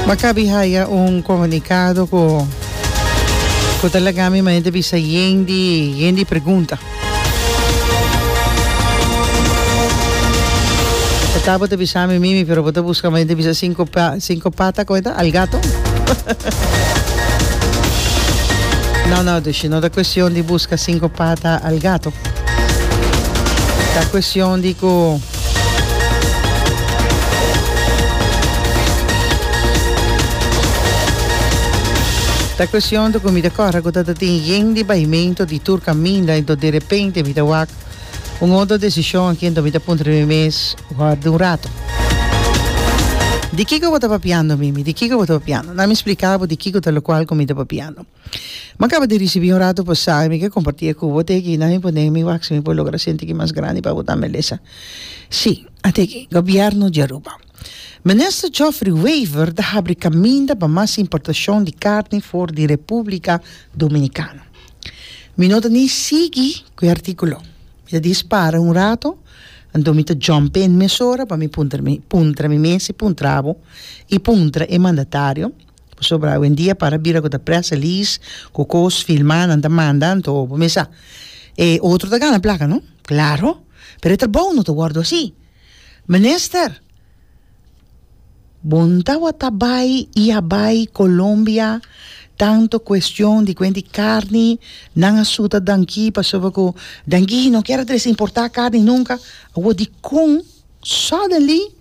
Maccabi haya un comunicado cu cu ta laga mi manera di bisa yen di yen di pregunta. Ta ta bo ta bisa mi mimi pero bo ta busca manera di bisa cinco pa cinco pata como ta al gato. no no dushi no ta cuestion di busca cinco pata al gato ta cuestion di cu Ta cuestion ta cu mi ta corra cu ta ta tin yen di baimento di tur caminda ento derepente mi ta wak un otro decision aki ento mi ta puntra mi mes worde un rato di kico bo ta papiando mimi di kico bo ta papiando na mi splica bo di kico ta locual cu mi ta papiando. Ma caba di ricibi un rato pasá y mi ke comparti e cu bo te aki na mi por nega mi wak si mi por logra senti ki mas grandi pa bo ta melesa. Sí, ate aki, Gobierno di Aruba. Minister Geoffrey Wever ta habri caminda pa mas importacion di carni for di Republica Dominicana. Mi no ta ni sigui cu e articulo. Mi ta dispara un rato, anto mi ta jump in mesora pa mi puntra mi puntra mi mes y puntra abo y puntra e mandatario. Pasobra awendia para bira ku ta press release ku kos filmá nan ta manda anto bo mes sa e otro ta gana plaka no klaro pero e trabou no ta wòrdu asi minister bo no tabata bai i a bai Colombia tanto kuestion di kuent di karni nan a suta danki pasobra ku danki no kier a trese importá karni nunka awor dikon suddenly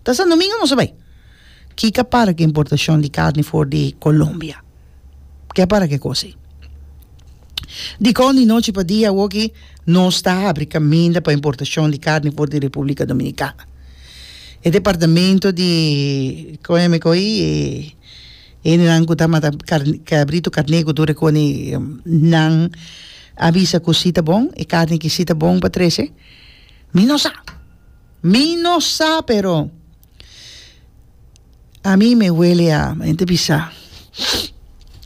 Ta San Domingo nos a bai. Kika para ku importashon di karni for di Colombia? Ke para ku e kos ei? Dikon di nochi pa dia awoki nos ta abri kaminda pa importashon di karni for di Republika Dominikana. E departamento di kon yami ko ei e hendenan ku ta mata kabritu, karneku tur e koni nan a bisa ku si ta bon, e karni ki si ta bon pa trese mi no sa. Mi no sa pero a mi me wele a mi ta bisa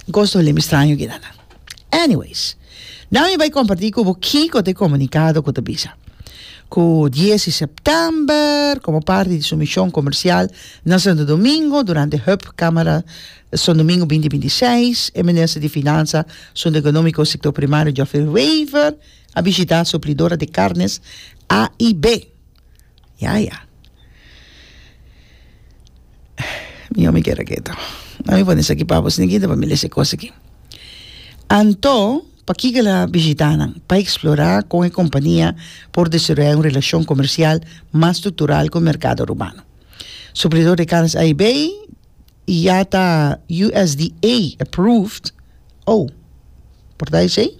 goos ta wele mi straño kida nan anyways nan mi bai comparti cu bo kico ta e comunicado cu ta bisa cu dies di september como parti di su mision comercial na santo domingo durante hub camara santo domingo binti binti seis e minister di finansa asunto economico sector primario Geoffrey Wever a bishita suplidora de carnes A y B. Ya, ya. Mi yomi keda keto. No mi pone esaki pa bo, si no kita pa mi lesa e cos aki. Anto, pakiko el a bishita nan? Pa explora con e compania por desaroya un relacion comercial mas structural cu e mercado Romano. Suplidor de carnes A y B, y ya ta USDA approved, oh, por ta esey?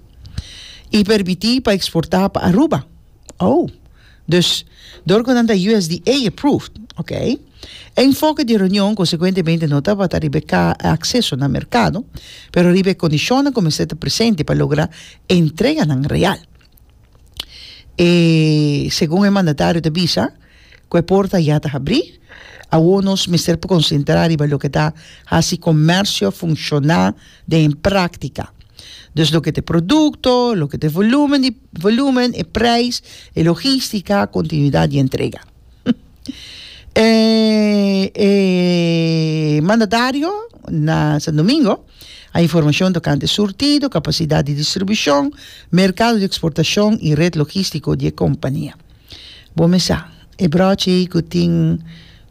Y permiti pa exporta pa Aruba, oh. Dus dor cu nan ta USDA approved, ok. E enfoke di e reunion consecuentemente no tabata riba e acceso na mercado, pero riba e condicionnan cu mester ta presente pa logra e entreganan real. E segun e mandatario ta bisa. ku e porta ya ta habrí. Awor nos mester por konsentrá riba loke ta hasi komersio funshoná den e práktika. Dus loke ta e produkto, loke ta e volúmen di volúmen, e preis, e logístika, kontinuidat di entrega. E e mandatario na Sandomingo a informashon tokante surtido, kapasidat di distribushon, merkado di eksportashon i ret logístiko di e kompania. Bo mi sa, e brochi ei ku tin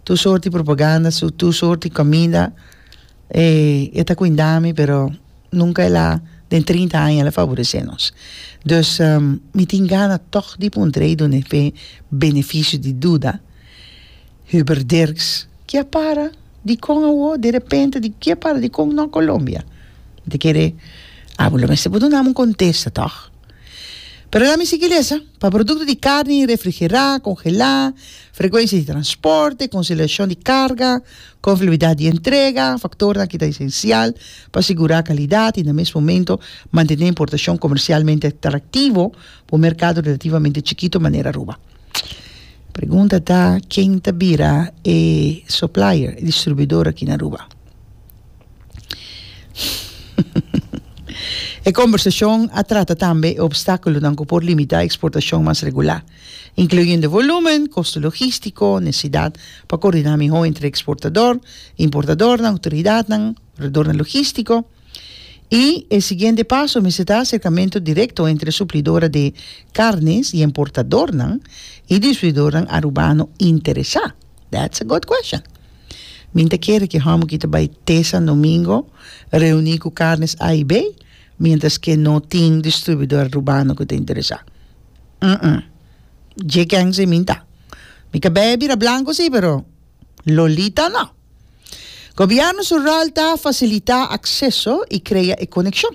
tur sorti propaganda, su tur sorti kominda, e ta kuinda mi, pero nunka el a, den trinta aña, el a faboresé nos. Dus, mi tin gana tòg di puntra ei done fe benefisio di duda, Huber Dirks, ke a para? Dikon awor? Derepente? Di ke a para? Dikon nò Colombia? Mi ta kere, a bo lo mester por dunam un kontesta tòg. Pero lami sigui lesa, Pa produkto di karni refrigerá, kongelá, frekuensia di transporte, konselashon di karga, konfiabilidat di entrega, faktornan ki ta esensial pa sigurá kalidat i na mes momento mantené importashon komersialmente atraktivo pa un merkado relativamente chikito manera Aruba. Pregunta ta, Ken ta bira e soplaier, e distribuidor, aki na Aruba? E kombersashon a trata tambe e opstákulonan ku por limitá eksportashon mas regulá, inkluyendo volúmen, kosto logístiko, nesesidat pa koordiná mihó entre eksportador, importadornan, outoridatnan, proveedornan logístiko, i e siguiente paso mester ta aserkamentu direkto entre suplidora de karnes y emportadornan y distribuidornan arubano interesá. That's a good question. Mi ta kere ki hòmber ki ta bai te San Domingo reuni ku Carnes A i B mientras ke no tin distribuidor Rubano ku ta interesá. Dje kèn si mi ta. Mi ka bèè bira blanko si pero Lolita no. Gobièrnu sural ta fasilitá akseso i krea e konekshon.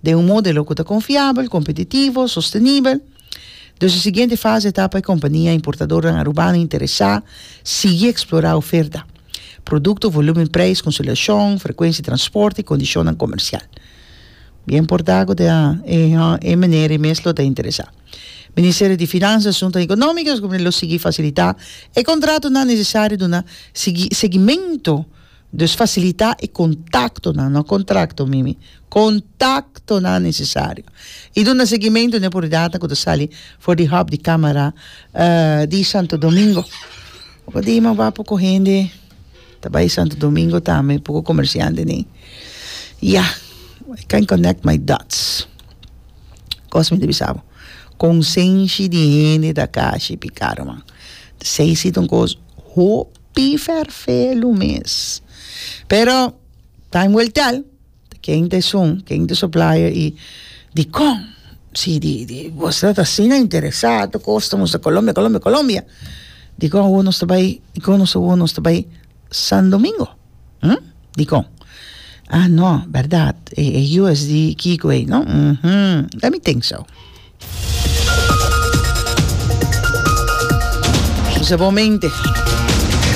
den un modelo cu ta confiabel, competitivo, sostenibel. Dus e siguiente fase ta pa e compania importadornan Arubano interesa sigui explora oferta, producto, volumen, prijs, consolidacion, frecuentie transport y condicionnan comercial. Bien porta cu ta e manera y mes lo ta interesa. Ministerio di Finansa, Asuntonan Economico lo sigui facilita e contratonan necesario duna sigui seguimento. Dus fasilitá e kontaktonan, no kontrakto, Mimi, kontaktonan nesesario i duna segimentu n'e oportunidatnan ku ta sali for di hòp di Kámara di Santo Domingo. Ora di Imam Wah poko hende ta bai Santo Domingo tambe, poko komersiante ni. Ya, I can't connect my dots. Kos mi ta bisa bo, konsenshi di hende ta kashi p'e karuman. Sey siton kos hoop. pifer fe lo mes. Pero time will tell ken ta esun ken ta soplayo y dikon si di di vos ta asina interesa ato kos ta musta Colombia Colombia Colombia dikon awor nos ta bay dikon nos awor nos ta bay sandomingo hmm dikon ah no berdad e e USD kiko ey no uhmm let me think so. José Bon Mente.